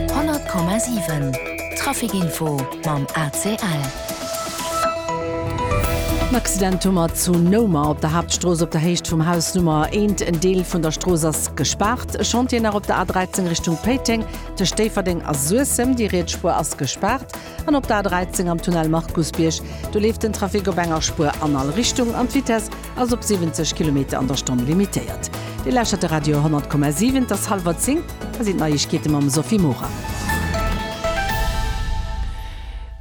100,7 Trafic Info mam ACL. En Accident hu mer zu Noumer op der Haaptstrooss op der Héicht vum Haus Nummer 1. En Deel vun der Strooss ass gespaart. E Chantier nach op der A13 Richtung Péiteng, tëscht Déifferdeng a Suessem. Déi riets Spuer ass gespaart. An op der A13 am Tunnel Markusbierg, do leeft den Trafic op enger Spuer an all Richtung an d'Vitess ass op 70 Kilometer an der Stonn limitéiert. Dir lauschtert de Radio 10,7. Et ass hallwer zéng. Hei sinn d'Neiegkeete mam Sophie Morang.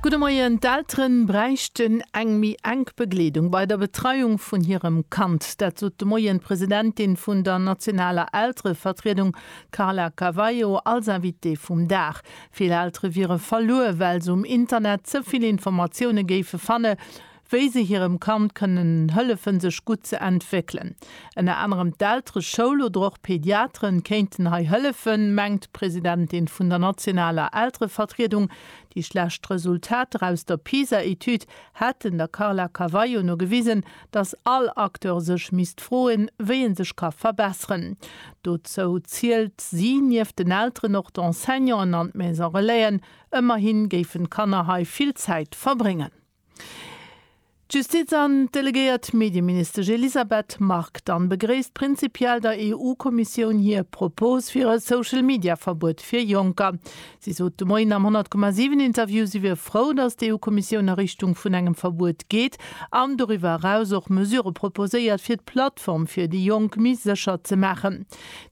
Gudde Moien. D'Eltere bräichten eng méi enk Begleedung bei der Betreiung vun hirem Kand. Dat sot de Moien d'Presidentin vun der nationaler Elterevertriedung Carla Cavallo als Invitée vum Dag. Vill Eltere wiere verluer, well se um Internet ze vill Informatioune géife fanne wéi se hirem Kand kënnen hëllefen, sech gutt ze entwéckelen. Ënner anerem d'Eltere-, Schoul oder och Pediatere kéinten hei hëllefen, mengt d'Presidentin vun der nationaler Elterevertriedung. Déi schlecht Resultater aus der PISA-Etüd hätten der Carla Carvalho no gewisen, dass all Acteur sech misst froen, wéi en sech ka verbesseren. Dozou zielt si nieft den Elteren och d'Enseignanten an d'Maison Relaisen. Ëmmerhi géifen d'Kanner hei vill Zäit verbréngen. D'Justiz an d'delegéiert Medieministesch Elisabeth Margue dann begréisst prinzipiell der EU-Kommissioun hir Propos fir e Social-Media-Verbuet fir Jonker. Si sot de Moien am 100 Komma 7 Interview, si wier frou, datt d'EU-Kommissioun a Richtung vun engem Verbuet geet an doriwwer eraus och Mesurë proposéiert, fir d'Plattform fir déi Jonk méi sécher ze maachen.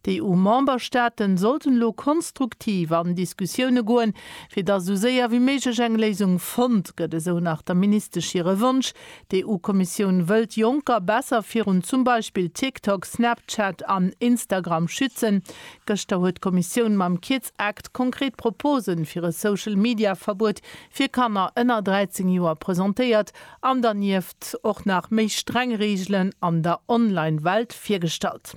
D'EU-Memberstaaten sollten elo konstruktiv an Diskussioune goen, fir datt esou séier wéi méiglech eng Léisung fonnt gëtt, esou nach der Ministesch hire Wonsch. D'EU-Kommissioun wëll d'Jonker besser virun zum Beispill TikTok, Snapchat an Instagram schützen. Gëschter huet d'Kommissioun mam Keir Act konkret Proposen fir e Social Media Verbuet fir Kanner ënner 13 Joer presentéiert an dernieft och nach méi streng Reegelen an der Online Welt virgestallt.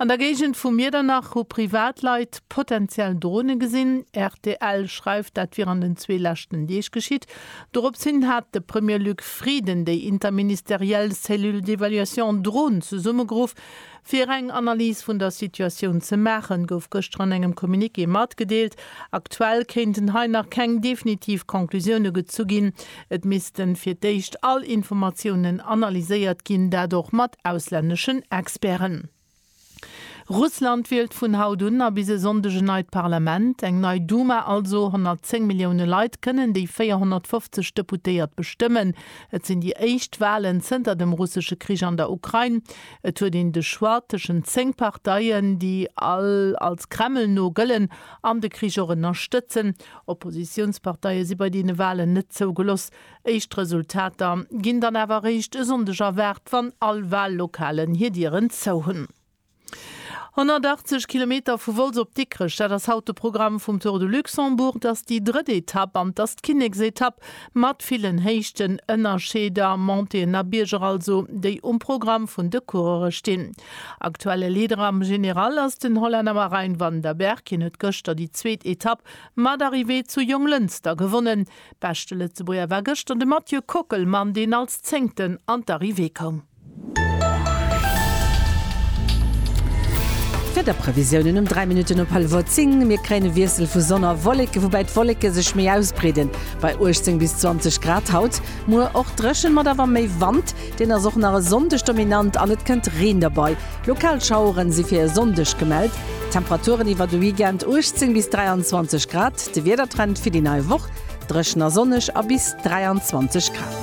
An der Géigend vu Miedernach hu Privatleit potenziell Drone gesinn. Rtl schreift dat wier an den zwee leschten Deeg geschitt. Dorops hin hat de Premier Luc Frieden déi interministeriell Cellule d'évaluation Drone zesummegeruff Fir eng Analys vun der Situatioun ze maachen, gouf gëschter an engem Communiqué matgedeelt, aktuell kéinten hei nach keng definitiv Conclusioune gezu ginn. Et misste fir d'éischt all Informatiounen analyséiert ginn, dat och mat auslänneschen Experten. Russland wielt vun haut un a bis e Sonndeg en neit Parlament, eng nei Duma also. 110 Millioune Leit kënnen déi 450 Deputéiert bestëmmen. Et sinn déi éischt Walen zënter dem russesche Krich an der Ukrain. Et huet een de Choix tëschent zéng Parteien, déi all als Kreml no gëllen an de Krich och ënnerstëtzen. Oppositiounsparteie si bei deene Walen net zougeloss. Éischt Resultater ginn dann awer eréischt e Sonndeg erwaart, wann all Wallokalen hir Dieren zou hunn. 180 Kilometer vu Wolz op Dikrech, dat ass haut de Programm vum Tour de Luxembourg. Et ass déi drëtt Etapp an et ass d'Kinneksetapp. Mat villen Héichten ënnerscheeder, Montéen a Bierger also, déi um Programm vun de Coureure stinn. Aktuelle Leader am General ass den Hollänner Marijn van der Berg. Hien huet gëschter déi zweet Etapp mat Arrivée zu Jonglënster gewonnen. Beschte Lëtzebuerger war gëschter de Mathieu Kockelmann, deen als Zéngten an d'Arrivée koum. Wiederprevisiounen um 3 Minutten op Halwer 10, Mir kréien e Wiessel vu Sonn a Wolleke, woubäi d'Wolleke sech méi ausbreeden, bei 18 bis 20 Grad haut. Muer och dréchen, mat awer méi Wand, deen ass och nach e Sonndeg dominant an et kënnt Reen derbei. Lokal Schaueren si fir e Sonndeg gemellt. Temperaturen iwwer de Weekend, 18 bis 23 Grad. De Wiedertrend fir déi nei Woch, dréchen a sonneg a bis 23 Grad.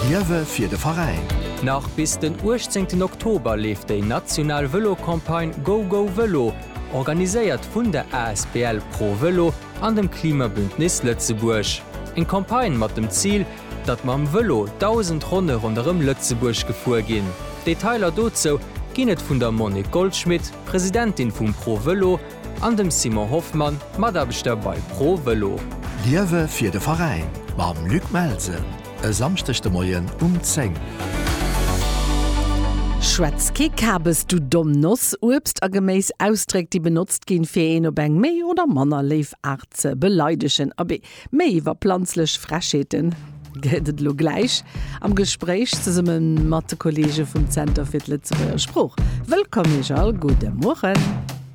Liewe fir de Veräin! Nach bis den 18 Oktober leeft déi national Vëlo-Campagne Go Go Vëlo, organiséiert vun der asbl Pro Vëlo an dem Klimabündnis Lëtzebuerg. Eng Campagne mat dem Zil, datt mam Vëlo 1000 Ronne ronderëm Lëtzebuerg gefuer ginn. Detailer dozou ginn et vun der Monique Goldschmit, Presidentin vum Pro Vëlo, An dem Simon Hoffmann, Mataarbechter bei Pro Vëlo. Liewe fir de Veräin mam Luc Melsen e Samschdeg de Moien um 10. Schwätz kee Kabes, du domm Noss! Uebst a Geméis, Ausdréck, déi benotzt ginn, fir een op eng méi oder manner léif Aart ze beleidegen. Abee, méi iwwer planzlech Frechheeten gëtt et elo gläich am Gespréich zesumme mat de Kolleege vum Zenter fir d'Lëtzebuerger Sprooch. Wëllkomm Iech all, gudde Mueren!